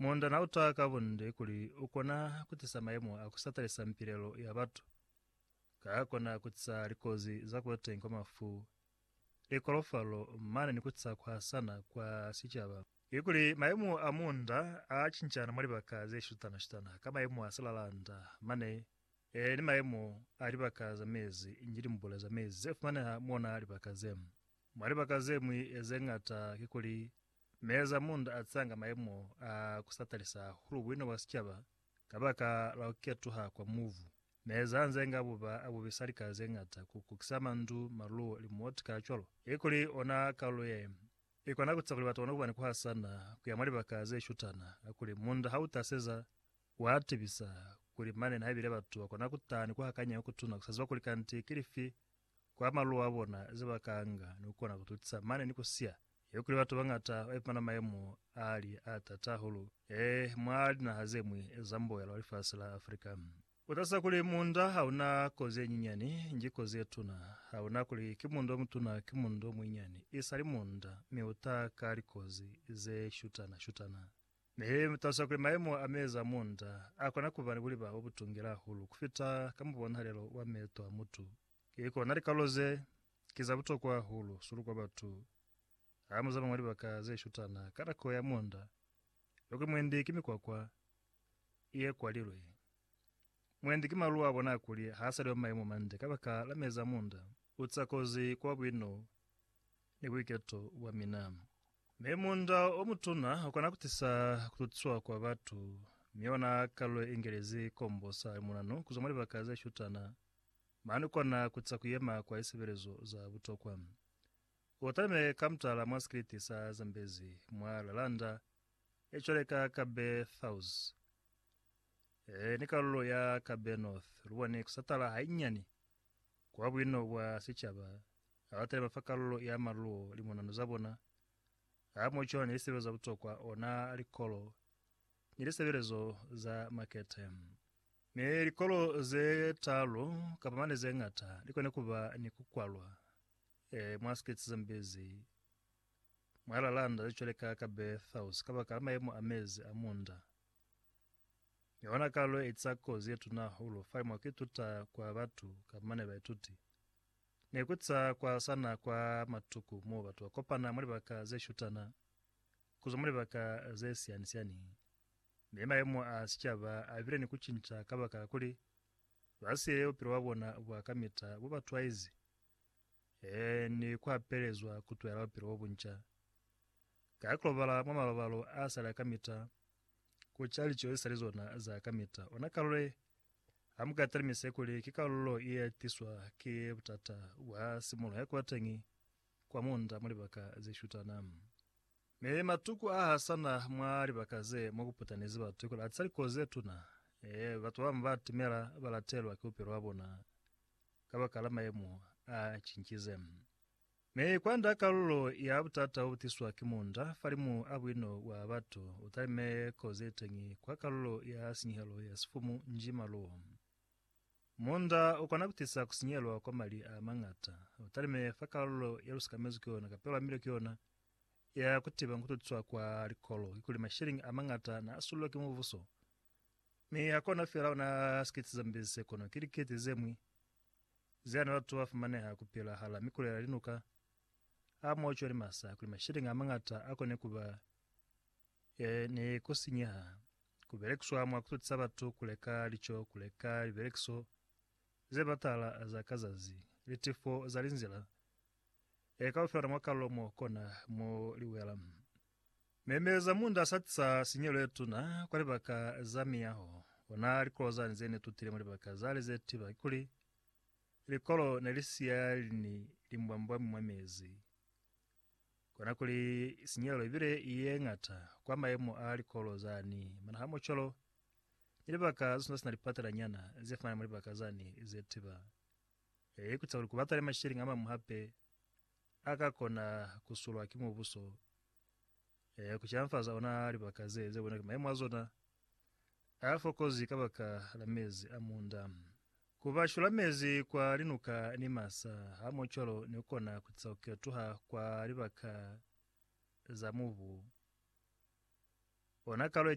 Munda na uta ka bunde kuli u kona ku tisa mayemo a ku satalisa mpilelo ya batu, ka a kona ku tisa likozi za ku ba teñi kwa mafu, likolofalo, mane ni ku tisa ku hasana kwa sicaba. Ki kuli mayemo a munda a cincana mwa libaka ze shutana-shutana ka mayemo a silalanda, mane e ni mayemo a libaka za mezi, inge limbule za mezi ze fumaneha mwa libaka ze. Mwa libaka ze ñwi ze ñata ki kuli Meeza munda a tsanga mayemo a ku sa talisa hahulu buina bwa sicaba kabaka la ku ketuha kwa mubu. Meeza a nze nga buba a bubisa lika ze ñata ku kukisa mandu, maluwo, limuoti kacwalo. Ikuli ona kalulo ye i kona ku tisa kuli batu ba kone ku ba ni ku hasana ku ya mwa libaka ze shutana, kakuli munda ha u taseza, wa tibisa kuli mane nihaibile batu ba kona ku taha ni ku hakanya ku kutuna ku sa ziba kuli kanti ki lifi kwa maluwa abona ze ba ka anga ni kukona ku tutisa mane ni ku siya. Ye kuli batu bangata ba ipumana mayemo a li a tata hahulu e mwa linaha ze ñwi za mboela wa lifasi la Africa. Ku talusa kuli munda ha u na kozi ye nyinyani, nji kozi ye tuna. Ha u na kuli ki munda o mutuna ki munda o muinyani, i sali munda, mi u ta ka likozi ze shutana-shutana. Nihaike mutasa kuli mayemo a mezi a munda akona kuba ni buliba bobutungi hahulu kufita ka mubonahalelo wa meeto a mutu, ki kona likalo ze ki za butokwa hahulu sulu kwa batu ha muzama mwa libaka ze shutana ka nako ya munda. Yokwi mwendi ki mikwakwa ye kwalilwe. Mwendi ki malu a bona kuli ha sa li mwa mayemo mande kabaka la mezi a munda. Uca kozi kwa buino ni buiketo bwa mina. Mi munda o mutuna u kona ku tisa ku tutiswa kwa batu, mi yona kalu ye ingelezi kombo sa limunanu ku zwa mwa libaka ze shutana, mane u kona ku tisa ku yema kwa lisebelezo za butokwa. U talime ka mutala mwa sikiliti sa Zambezi mwa Laranda, e cwale ka Kabe South, e ni kalulo ya Kabe North, lu boni ku satala hainyinyani Kwa buino bwa sicaba, abalateli ba fa kalulo ya maluo limonano za bona, ha mo cwana ni lisebelezo za butokwa, ona likolo ni lisebelezo za makete. Mi likolo ze talu kapa mane ze ngata li kone ku ba ni ku kwalwa e mwa States ze mbezi mwa lilanda ze cwale ka ka Berthaus kabakala mayemo a mezi a munda Yona kalo ye etiza kozi ye tuna hahulu fa mwa ku ituta kwa batu kamba ne baituti, ne ku za kwa sana kwa matuku mo batu ba kopana mwa libaka ze shutana ku zwa mwa libaka ze siani-siani. Mi mayemo a sicaba a bile ni ku cinca kabakala kuli ba siile bupilo bwa bona bwa kamita bo ba twaizi, eeh, ni ku hapelezwa ku tuhela bupilo bo bunca ka ku lobala mwa malobalo a sali a kamita. ku ca lico ze sa li zona za kamita. Ona karolo ye, ha mu ka talimisa kuli ki karolo ye ya tiswa ki butata bwa simulo ya kuba teñi kwa munda mwa libaka ze shutana. Mi matuku a hasana mwa libaka ze mo ku putanezi batu ki kuli a tisa likozi ze tuna. Ee, batu ba bañwi ba atimela ba latelwa ki bupilo bwa bona kabakala mayemo a cincize. Mi kwanda kalulo ya butata obutiswa ki munda falimu a buino bwa batu utalime kozi yeteñi kwa kalulo ya sinyehelo ya sifumu nji maluo. Munda ukona kutisa kusinyelwa kwa mali a mañata, utalime fa kalulo ya lusikamezwi ki yona kapela milio ki yona ya kutiba nkututiswa kwa likolo kikuli mashilingi a mañata na asululwa ki mubuso. Mi hakona fela ona sikiti zambi se kono ki likiti zemwi. zea na latuwa fumaneha kupila hala mikulela linuka a moco ni masa kuli masheleñi a mañata a kone kuba e ni kusinyeha, kubelekiswa mwa kututisa batu kuleka lico, kuleka libelekiso ze batala za ka zazi, litifo za linzila, e ka lu fela mwa kalulo mo kona mo li wela. Memeza munda sa tisa sinyelo ye tuna kwa libaka za miyaho. Ona likolo zani ze ne tutile mwa libaka zale ze tiba kikuli likolo ne li siya lini limbwambwami mwa mezi. Kona kuli sinyelo ibile ye ngata kwa mayemo a likolo zani, mana hamocholo ni libaka ze sina sina lipatela nyana ze fana mwa libaka zani ze tiba. He i kuca kuli ku baka ni masheleñi a mañwi hape a ka kona ku sulwa ki mubuso. He ku silafaza ona libaka ze, ze bonwa ki maimo a zona a fokozi kabaka la mezi a munda. Ku ba shula mezi kwa linuka ni masa hamohocwalo ne ku kona ku tisa ku ketuha kwa libaka za mubu ona kalo ye.